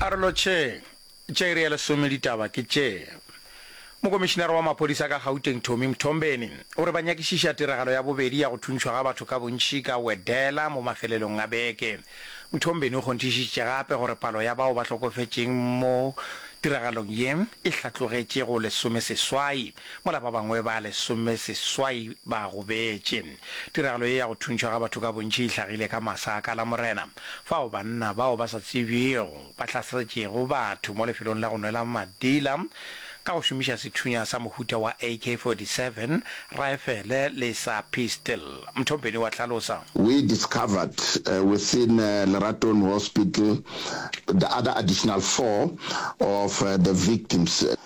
Arolo tše tša iri ya lesome ditaba ke tše. Mokomišinara wa maphodisa ka Gauteng Tommy Mthombeni o re ba nyakišiša tiragalo ya bobedi ya go thuntšhwa ga batho ka bontši ka Wedela mo mafelelong a beke. Mthombeni o kgonthišitše gape gore palo ya bao ba hlokofetšeng mo tiragalong ye e hlatlogetše go lesomeseswai mola ba bangwe ba lesomeseswai ba gobetše. Tiragalo ye ya go thuntšhwa ga batho ka bontši e hlagile ka masa a ka Lamorena. Fao banna bao ba sa tsebjego ba hlaseletšego batho mo lefelong la go nwela madila ka go šomiša sethunya sa mohuta wa AK-47, raefele le sa pistol, Mthombeni wa hlalosa. We discovered within Leratong Hospital the other additional four of the victims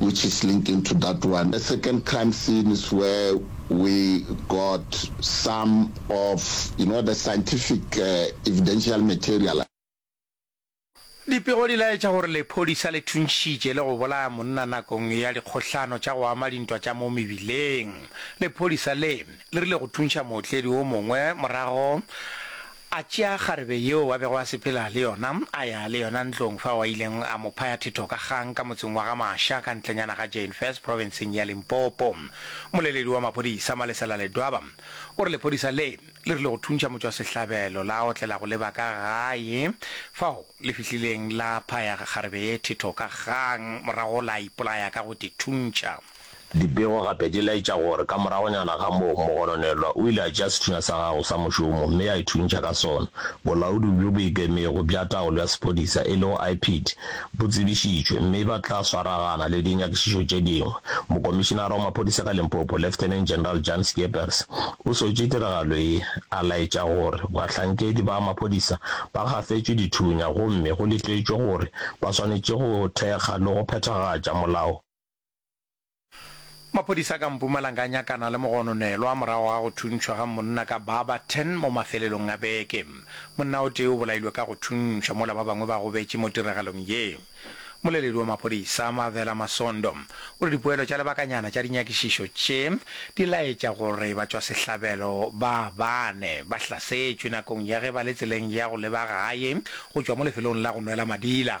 which is linking to that one. The second crime scene is where we got some of you know the scientific evidential material. Dipego di laetša gore lephodisa le thuntšhitše le go bolaya monna nakong ya dikgohlano tša go ama dintwa tša mo mebileng. Lephodisa le, le rile go thuntšha mootledi o mongwe morago A tšea kgarebe yeo a bego a sepela le yona, a ya le yona ntlong fao a ileng a mo phaya thetho ka kgang ka motseng wa Gamasha ka ntlenyana ga Jeinfest profenseng ya Limpopo. Mmoleledi wa maphodisa, Malesela Ledwaba, o re lephodisa le, le rile go thuntšha motšwasehlabelo la otlela go leba ka gae fao le fihlileng la phaya kgarebe ye thetho ka kgang, morago la ipolaya ka go te thuntšha. Dipego gape di laetša gore ka moragonyana ga moo, mogononelwa o ile a tšea sethunya sa gago sa mošomo mme a ithuntšha ka sona. Bolaodi bjo bo Ikemego bja Taolo ya Sephodisa, e lego IPID, bo tsebišitšwe mme ba tla swaragana le dinyakišišo tše dingwe. Mokomišinara wa Maphodisa ka Limpopo, Lieutenant General Jan Scheepers, o swetše tiragalo ye, a laetša gore bahlankedi ba maphodisa ba gafetšwe dithunya gomme go letetšwe gore ba swanetše go thekga le go phethagatša molao Maphodisa ka Mpumalanga a nyakana le mogononelwa morago ga go thuntšhwa ga monna ka baba 10 mo mafelelong a beke. Monna o tee o bolailwe ka go thuntšhwa mola ba bangwe ba gobetše mo tiragalong ye. Mmoleledi wa maphodisa, Mavela Masondo, o re dipoelo tša lebakanyana tša dinyakišišo tše di laetša gore batšwasehlabelo ba bane ba hlasetšwe nakong ya ge ba le tseleng ya go leba gae go tšwa mo lefelong la go nwela madila.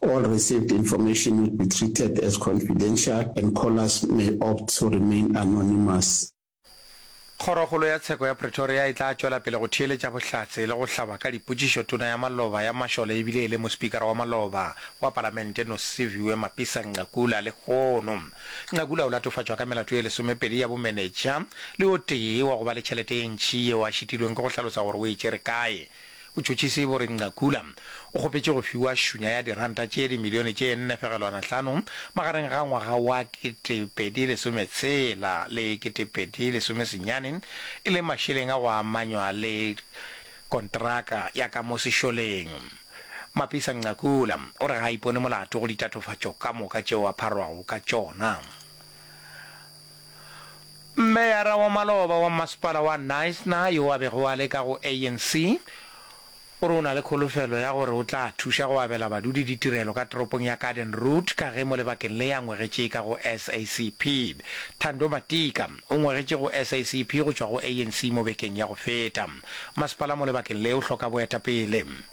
All received information would be treated as confidential and callers may opt to remain anonymous. Kgorokgolo ya Tsheko ya Pretoria e tla tšwela pele go theeletša bohlatse le go hlaba ka dipotšišo tona ya maloba ya mašole e bile e le mospikara wa maloba wa palamente Nosiviwe Mapisa-Nqakula lehono. Nqakula o latofatšwa ka melato e lesomepedi ya bomenetša le o tee wa go ba le tšhelete e ntši yeo a šitilweng ke go hlalosa gore o e tšere kae. Botšhotšhisi bo re Ngakula o kgopetše go fiwa šunya ya diranta tše dimilione tše nne fegelwana hlano magareng ga ngwaga wa kete pedi lesome tshela le kete pedi lesome senyane e le mašeleng a go amanywa le kontraka ya ka mo sešoleng. Mapisa Ngakula o re ga a ipone molato go ditatofatšo ka moka tšeo a pharwago ka tšona. Meyara wa maloba wa mmasepala wa Knysna yo a bego a le ka go ANC o re o na le kholofelo ya gore o tla thuša go abela badudi ditirelo ka toropong ya Garden Route ka ge mo lebakeng le a ngwegetše ka go SACP. Thando Matika o ngwegetše go SACP go tšwa go ANC mo bekeng ya go feta. Masepala mo lebakeng le o hloka boetapele.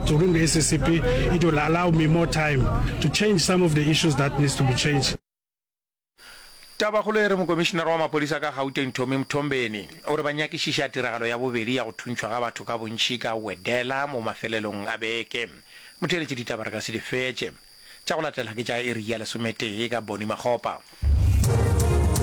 During the SACP, it will allow me more time to change some of the issues that needs to be changed. Tabakgolo e re Mokomišinara wa Maphodisa ka Gauteng Tommy Mthombeni o re ba nyakišiša tiragalo ya bobedi ya go thuntšhwa ga batho ka bontši ka Wedela mo mafelelong a beke. Motheeletši ditaba re ka se di fetše. Tša go latela ke tša iri ya lesometee ka Bonnie Makgopa.